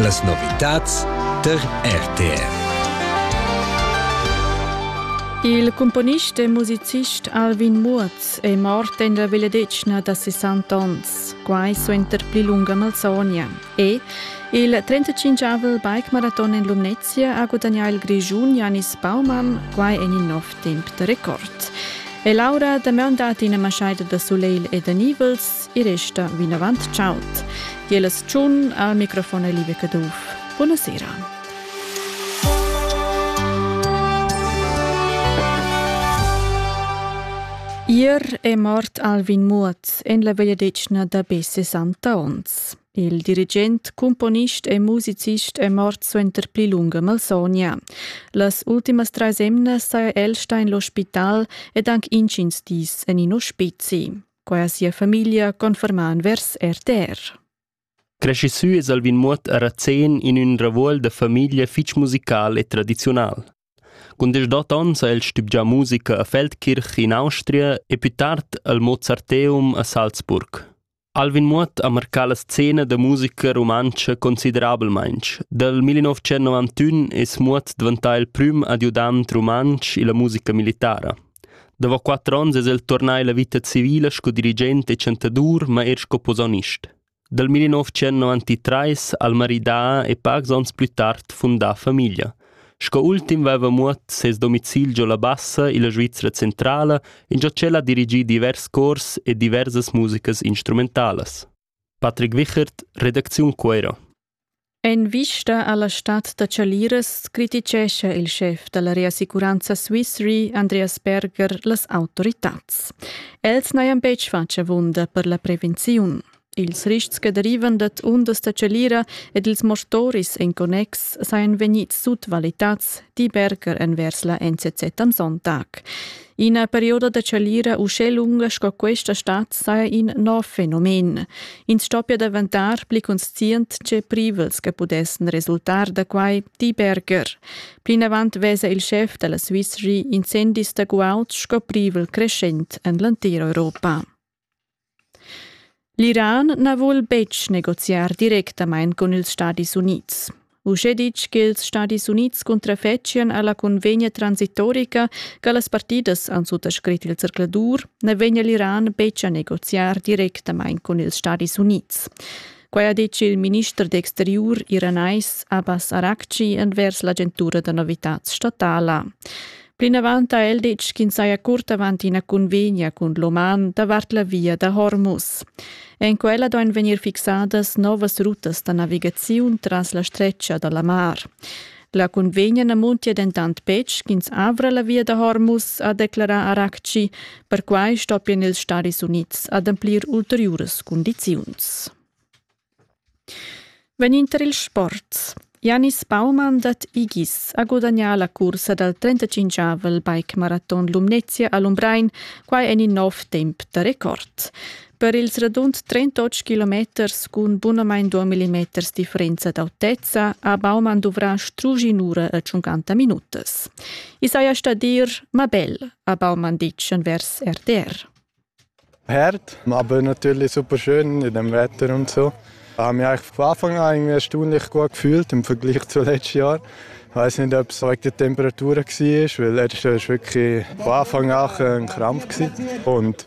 Las novitads tar RTR. Il cumponist e musicist Alvin Muoz è mort en la vegliadetgna da 60 onns, quai suenter pli lunga malsogna. E il 35-avel bike-maraton en Lumnezia ha gudagnà il Grischun Janis Baumann, quai en in nov temp da record. E Laura Damian dat ina maschaida da sulegl e da nivels e resta vinavant chaud. Gielas tschun al microfon è Liebe Caduff. Buonasera. Ier è mort Alvin Muoth en la vegliadetgna da be 60 onns. Il dirigent, cumponist e musicist è mort suenter pli lunga malsogna. Las ultimas trais emnas saja el stà en l'ospital ed anche intgins dis en in ospizi. Quai ha sia famiglia confermà envers RTR. Cresci sü es Alvin Muot a Razén in ün ravuol da famiglia fich musical e tradiziunal. Cun desch ons ha el stübgià musica a Feldkirch in Austria e più tard al Mozarteum a Salzburg. Alvin Muot ha marcà la scena da musica rumantscha considerabelmaing. Dal 1991 es Muot dvantà il prüm adiudant rumantsch illa musica militara. Davo quatter ons es el turnà illa vita civila sco dirigent e chantadur, ma eir sco posaunist. Dal 1993 ha'l maridà e pacs ons plü tard fundà famiglia. Sco ultim vaiva muot ses domicil giò la Bassa illa Svizra centrala, ingiò ch'el ha dirigì divers cors e diversas musicas instrumentalas. Patrick Wichert, redacziun Cueiro. En vista alla stad da chaliras criticescha il schef dalla Reassicuranza Swiss Re Andreas Berger las autoritads. Els n'hajan betg fatg avunda per la prevenziun. Ils rists che derivan dad undas da chalira ed ils mortoris en connex sajan vegnids sutvalitads, di Berger envers la NZZ am Sonntag. Ina perioda da chalira uschè lunga sco questa stat saja in nov fenomen. Ins stoppia daventar pli conscient tge privels che pudessan resultar da quai, di Berger. Plinavant vesa il schef della Swiss Re incendis da guauds sco privel creschent en l'entira Europa. L'Iran na vul betg negoziar directamain cun ils Stadis Unids. Uschè ditg ch'ils Stadis Unids cuntrafetschian a la cunvegna transitorica che las partidas han suttascrit il zercladur, na vegnia l'Iran betg a negoziar directamain cun ils Stadis Unids. Quai ha detg il minister d'exteriur iranais Abbas Arakci envers l'agentura da novitads statala. Plinavant ha el detg ch'ins saja curt avant ina convegna cun l'Oman davart la via da Hormuz. En quella duain vegnir fixadas novas rutas da navigaziun tras la stretga da la mar. La cunvegna na muntia dentant betg ch'ins avra la via da Hormuz, ha declarà Arakci. Perquai stoppien ils Stadis Unids ademplir ulteriuras cundiziuns. Venind il sport. Janis Baumann dat Igis ha gudagnà la cursa dal 35-avel bike-maraton Lumnezia a Lumbrein, quai en in nov temp da record. Per ils radund 38 kilometers cun bunamain 2 mm differenza d'autezza ha Baumann duvrà strusch in'ura e 50 minutas. I saja stà dir, ma bel, ha Baumann ditg envers RTR. Herd, aber natürlich super schön in dem Wetter und so. Ich habe mich eigentlich von Anfang an irgendwie erstaunlich gut gefühlt im Vergleich zu letztes Jahr. Ich weiß nicht, ob es wegen der Temperatur war, weil letztes Jahr war wirklich von Anfang an ein Krampf. Und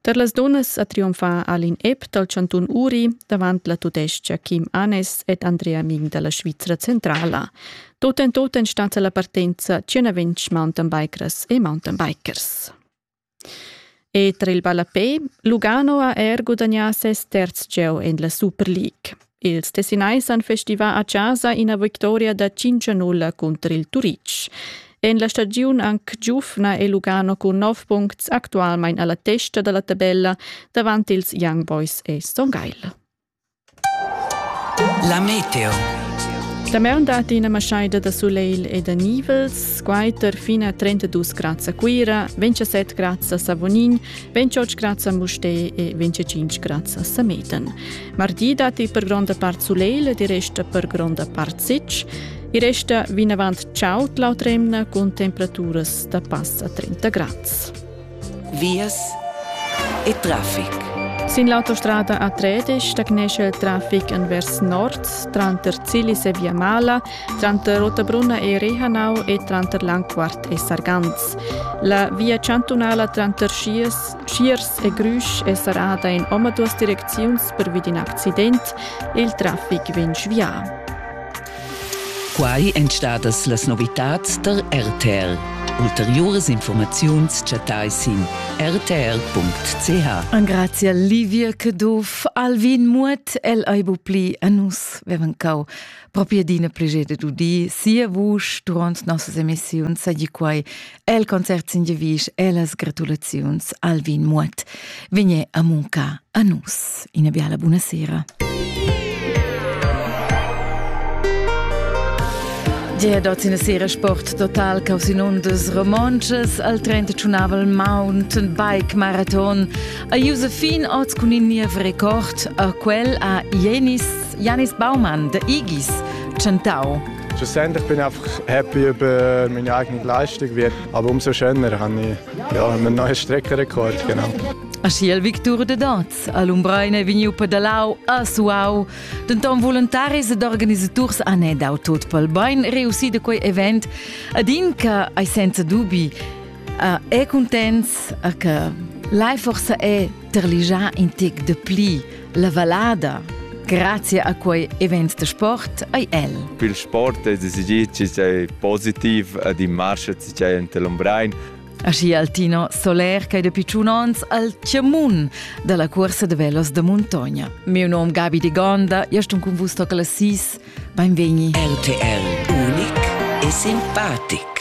Per las dunnas ha triumfà Alin Epp dal chantun Uri davant la tudestga Kim Anes ed Andrea Ming da la Svizra centrala. Tut en tut en stat la partenza 120 mountainbikers e mountainbikers. E tra il ballapé, Lugano ha er gudagnà ses terz gieu en la Super League. Els Tessinai san festivà a chasa ina victoria da 5-0 cunter il Turitg. En la stagiun anc giufna è Lugano cun 9 puncts actualmain alla testa dalla tabella davant ils Young Boys e Stone Isle. La meteo. La maun dat ina maschaida da sulegl e da nivels, quaiter fina 32 grads a Cuira, 27 grads a Savonin, 28 grads a Mustè e 25 grads a Sameten. Mardi datti per gronda part sulegl, di resta per gronda part sitg. I resta vinavant chaud l'autremna cun temperaturas da passa 30 grads. Vias e traffic. Sin l'autostrada A13 stagnesce il traffic envers nord tranter Zilis e Via Mala, tranter Rotabrunna e Rehanau e tranter Langquart e Sargans. La via chantunala tranter Schiers Tschiers e Grüsch è serrada in omaduas direcziuns pervi d'in accident. Il traffic vegn svià. Quai èn stadas las novitads tar RTL. Ulteriuras informaziuns chattai sin rtr.ch. Angrazia Livia Caduff, Alvin Muot, el aibu pli a nus vevancau. Propria dina prigede d'udi, sia vusch durant nossas emissiuns, sagi quai El concert s'ingiavisch ellas gratulaziuns Alvin Muot. Vegné a munca a nus. Ina biala buonasera. Gia dot in sera sport total caus in undas romontschas al 35 mountain bike marathon a Josephine oz cun in niev record a quel a Jenis Janis Baumann de Igis chantau Schlussendlich bin ich einfach happy über meine eigene Leistung wird. Aber umso schöner habe ich ja, einen neuen Streckenrekord. Genau. Aschia victur de daz all'Umbrein è vegniu pedalau a Suau, denton voluntaris ed organisaturs han dau tot pel bein reussì da quei event, ad in che ei senza dubi, è contents, che Lai forse è Terligià in tic de pli la vallada. Grazie a quei event de sport ei el. Il sport è decidì che sei positiv ad in marche ci c'è in Telombrein. Aschi Altino Soler che de picciun ons al Cemun dalla corsa de velos de Montogna. Mio nom Gabi di Gonda, io sto con vus toca la sis. Benvegni. RTL unic e simpatic.